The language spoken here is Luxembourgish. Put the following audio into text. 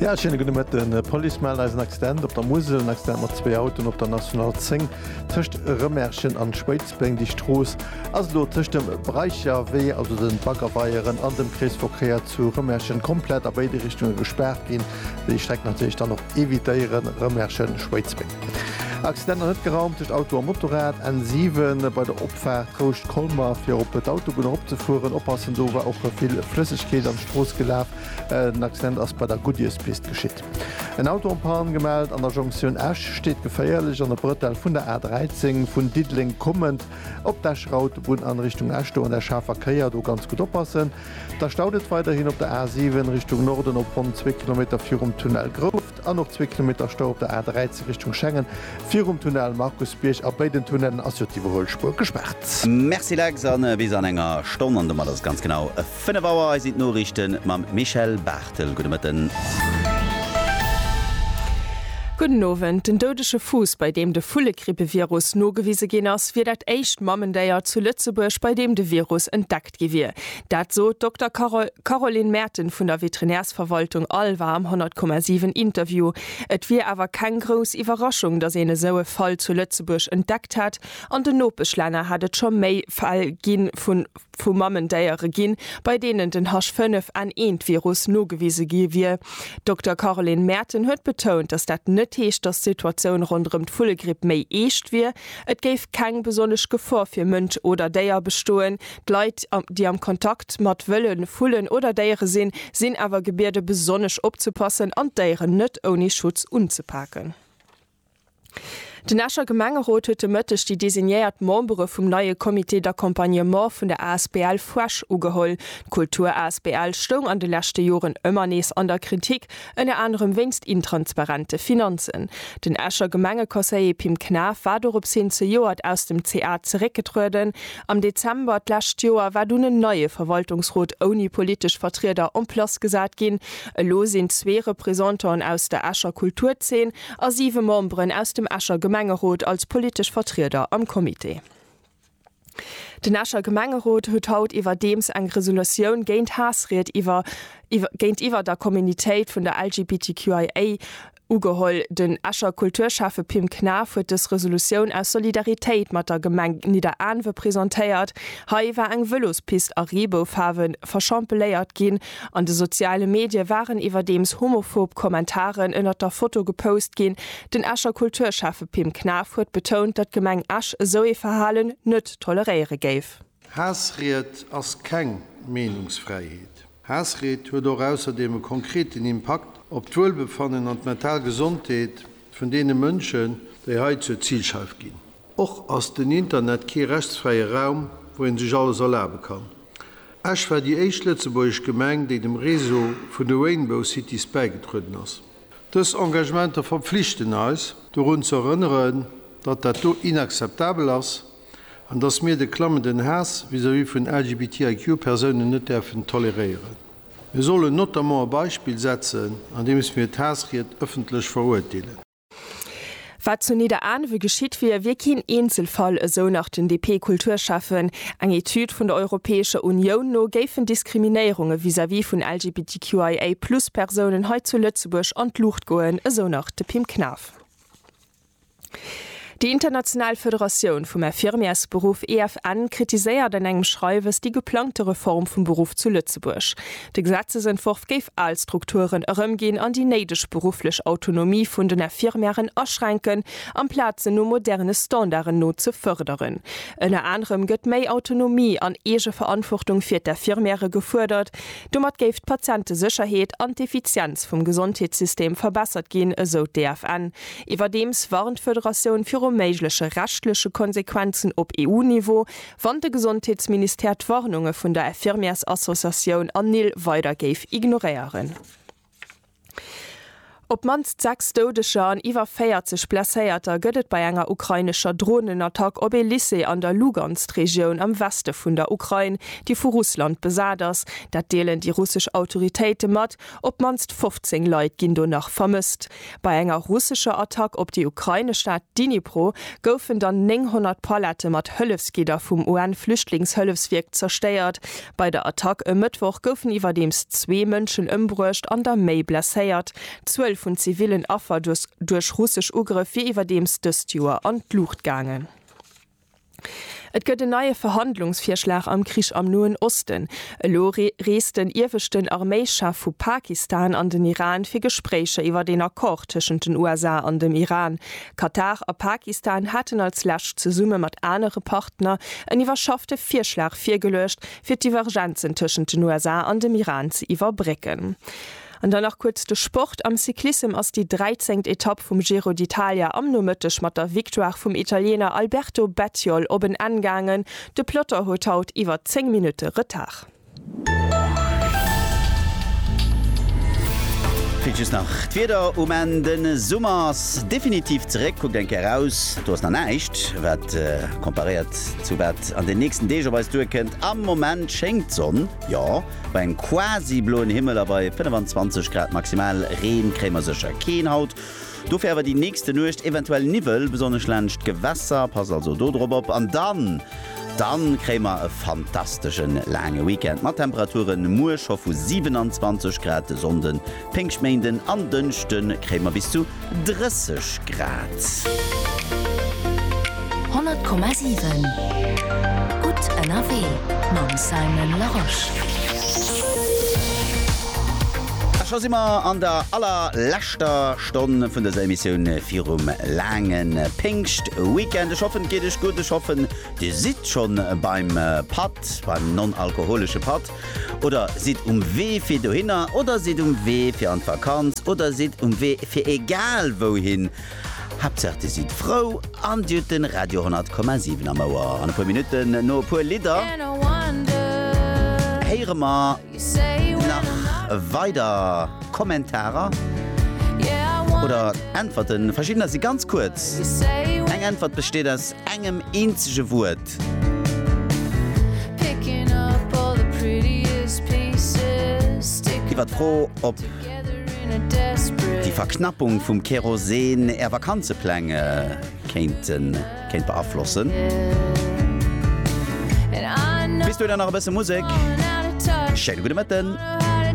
Ja schéine gudde Mëtten. D'Police mellt eis en Accident op der Musel. En Accident mat zwee Autoen op der National 10 tëscht Rëmerschen an Schwéidsbeng. Déi Strooss ass elo tëscht dem Breicherwee, also de Baggerweieren, an dem Kreesverkéier zu Rëmerschen komplett a béide Richtunge gespaart ginn. Déi Streck natierlech dann och evitéieren, Rëmerschen, Schwéidsbeng. Accidenter net geraumt tëscht Auto a Motorrad, N7 bei der Opfaart Rouscht-Colmer fir op d'Autobunn eropzefueren. Oppassen, do war och vill Flëssegkeet an d'Strooss gelaf. En Accident ass bei der Goodierspist geschitt. En Auto en panne gemellt an der Jonktioun Esch steet geféierlech an der Brëtell vun der A13. Vun Diddeleng kommend op d'Esch Rout, Bunn an Richtung Esch do an der schaarfer Kéier do ganz gutt oppassen. Da staut et weiderhin op der A7 Richtung Norden op ronn zwee Kilometer virum Tunnel Grouft an och zwee Kilometer Stau op der A13 Richtung Schengen virum Tunnel Markusbierg. A béiden Tunnellen ass jo d'Iwwerhuelspuer gespaart. Merci Lex, a bis an enger Stonn an domat ass et ganz genau. 5 Auer, hei sinn d'Noriichten mam Michèle Barthel. Gudde Mëtten. Gudden Owend. Den doudege Fuuss, bei deem de Vullegrippevirus nogewise ginn ass, wier dat éischt Mammendéier zu Lëtzebuerg, bei deem de Virus entdeckt gi wier. Dat sot d'Dokter Caroline Merten vun der Veterinärsverwaltung Alva am 100,7 Interview. Et wier awer keng grouss Iwwerraschung, datt een esou e Fall zu Lëtzebuerg entdeckt hätt. An den Nopeschlänner hätt et scho méi Fäll gi vu vu Mamendéiere ginn, bei deenen den H5N1-Virus nogewise gi wier. D'Dokter Caroline Maerten huet betount, datt dat net heescht, datt d'Situatioun ronderëm d'Vullegripp méi eescht wier. Et géif keng besonnesch Gefor fir Mënsch oder Déier bestoen. D'Leit, déi am Kontakt mat Wëlle, Vullen oder Déiere sinn, sinn awer gebiede besonnesch opzepassen an d'Déieren net ouni Schutz unzepaken. Den Escher Gemengerot huet de Mëtteg déi designéiert Membere vum neie Comité d'accompagnement vun der asbl Fresh ugeholl. D'Kultur asbl stoung an de leschte Joren ëmmer nees an der Kritik, ënner anerem wéinst intransparente Finanzen. Den Escher Gemengeconseiller Pim Knaff war dorops hin zejoert aus dem ca zeréckgetrueden. Am Dezember d'lescht Joer war dunn en neie Verwaltungsrot ouni politesch Vertrieder en place gesat ginn. Elo sinn zwee Representanten aus der Escher Kulturzeen, A siwe Memberen aus dem Escher Gemengerot als politesch Vertrieder am Comité. Den Escher Gemengerot huet haut iwwerdeems eng Resolutioun géint Haassried iwwer géintiwwer der Communitéit vun der LGBTQIA ugeholl. Den Escher Kulturschäffe Pim Knaff huet dës Resolutioun aus Solidaritéit mat der Gemeng Nidderaanwe presentéiert. Hei war eng Vëlospist a Reeboufaarwe verschampeléiert ginn. An de soziale Medie waren iwwerdeems homophob Kommentaren ënnert der Foto gepost ginn. Den Escher Kulturschäffe Pim Knaff huet betount, datt d'Gemeng Esch esou ee Verhalen net toleréiere géif. Haassried ass keng Meenungsfräiheet. Haassried huet och ausserdeem e konkreten Impakt op d'Wuelbefannen an d'mental Gesondheet vun deene Mënschen, déi hei zur Zilscheif ginn. Och ass den Internet kee rechtsfräie Raum, wou ee sech alles erlabe kann. Esch war déi éischt lëtzebuergesch Gemeng, déi dem Réseau vun de Rainbow Cities bäigedrueden ass. Dës Engagementer verpflichten eis, dorun ze erënneren, datt dat do inakzeptabel ass. an dass mir de klammenden Haass vis-à-vis vun LGBTIQ Persounen net däerfen toleréieren. Mir sollen notamment e Beispill setzen, andeems mir d'Haassried ëffentlech verurteelen. Wat zu Nidderaanwe geschitt wier, wier keen Eenzelfall, esou nach den DP-Kulturschäffen. Eng Etüd vun der Europäescher Unioun no géifen Diskriminéierunge vis-à-vis vun LGBTQIA+ Persounen hei zu Lëtzebuerg an d'Luucht goen, esou nach de Pim Knaff. Déi international Federatioun vum Infirmiersberuff, EFN, kritiséiert an engem Schreiwes déi geplangte Reform vum Beruff zu Lëtzebuerg. De Gesetzesentworf géif al Strukturen erëmginn an déi néideg berufflech Autonomie vun den Infirmièren aschränken, amplaz se no moderne Standarden no ze fërderen. Ënner anerem gëtt méi Autonomie an Eegeverantwortung fir d'Infirmiere gefuerdert. Domat géif d'Patientesécherheet an d'Effizienz vum Gesondheetssystem verbessert ginn, esou d'EFN. Iwwerdeems warnt d'Federatioun viru méigleche rechtleche Konsequenzen op EU-Niveau, wann de Gesondheetsministère d'Warnunge vun der Infirmièresassociatioun Anil weider géif ignoréieren. Op d'mannst 6 Doudeger an iwwer 40 Blesséierter gëtt et bei enger ukrainescher Dronenattack op ee Lycée an der Lugansk-Regioun am Weste vun der Ukrain, déi vu Russland besat ass. Dat deelen déi russesch Autoritéite mat. Op d'mannst 15 Leit ginn do nach vermësst. Bei enger russescher Attack op déi ukrainesch Stad Dnipro goufen dann 900 Palette mat Hëllefsgidder vum UN-Flüchtlingshëllefswierk zerstéiert. Bei der Attack e Mëttwoch goufen iwwerdeems zwee Mënschen ëmbruecht an der méi blesséiert. D'Zuel vun zivillen Affer duerch russesch Ugrëff wier iwwerdeems dëst Joer an d'Luucht gaangen. Et gëtt en neie Verhandlungsvirschlag am Krich am Noen Osten. Elo reest den ieweschten Arméischef vu Pakistan an den Iran fir Gespréicher iwwert een Accord tëschent den USA an dem Iran. Katar a Pakistan haten als lescht zesumme mat anere Partner en iwwerschaffte Virschlag virgeluecht, fir d'Divergenzen tëschent den USA an dem Iran ze iwwerbrécken. An dann nach kuerz de Sport, Am Cyclissem ass déi 13. Etapp vum Giro d'Italia am Nomëtteg mat der Victoire vum Italiener Alberto Bettiol op en Enn gaangen. De Peloton huet haut iwwer 10 Minutte Retard. Fir just nach d'Wieder um Enn, De Summer ass definitiv zeréck, kuckt eng Kéier eraus, do ass nach näischt wat komparéiert zu wat an den nächsten Deeg op eis duerkënnt. Am Moment schéngt d'Sonn, jo. Bei engem quasi bloen Himmel a bei 25 Grad maximal Reen kréie mer sécher keen haut. Dofir awer déi nächste Nuecht eventuell Niwwel, besonnesch laanscht d'Gewässer, passt also do drop op. An dann, dann kréie mer e fantasteschen laange Weekend mat Temperaturen muer scho vu 27 Grad de Sonnden Péngschtméinden an Dënschde kréie mer bis zu 30 Grad. 100,7 Gutt ënnerwee mam Simon Larosche. A scho si mer an der allerleschter Stonn vun dëser Emissioun virum laange Péngschtweekend. Ech hoffen, et geet Iech gutt. Ech hoffen, Dir sidd schonn beim Patt, beim non-alkoholesche Patt. Oder sidd um Wee fir dohinner oder sidd um Wee fir an d'Vakanz oder sidd um Wee fir egal wouhin, Haaptsaach dir sidd frou an dir hutt den Radio 100,7 am Ouer. An e puer Minutten, no e puer Lidder, héiere mer nach weider Kommentarer oder Äntwerten. Verschiddener si ganz kuerz. Eng Äntwert besteet aus engem eenzege Wuert. Iwwer d'Fro, ob déi Verknappung vum Kerosin Är Vakanzepläng kéint beaflossen? Bis dohinner nach e bësse Musek. Schéine gudde Mëtten.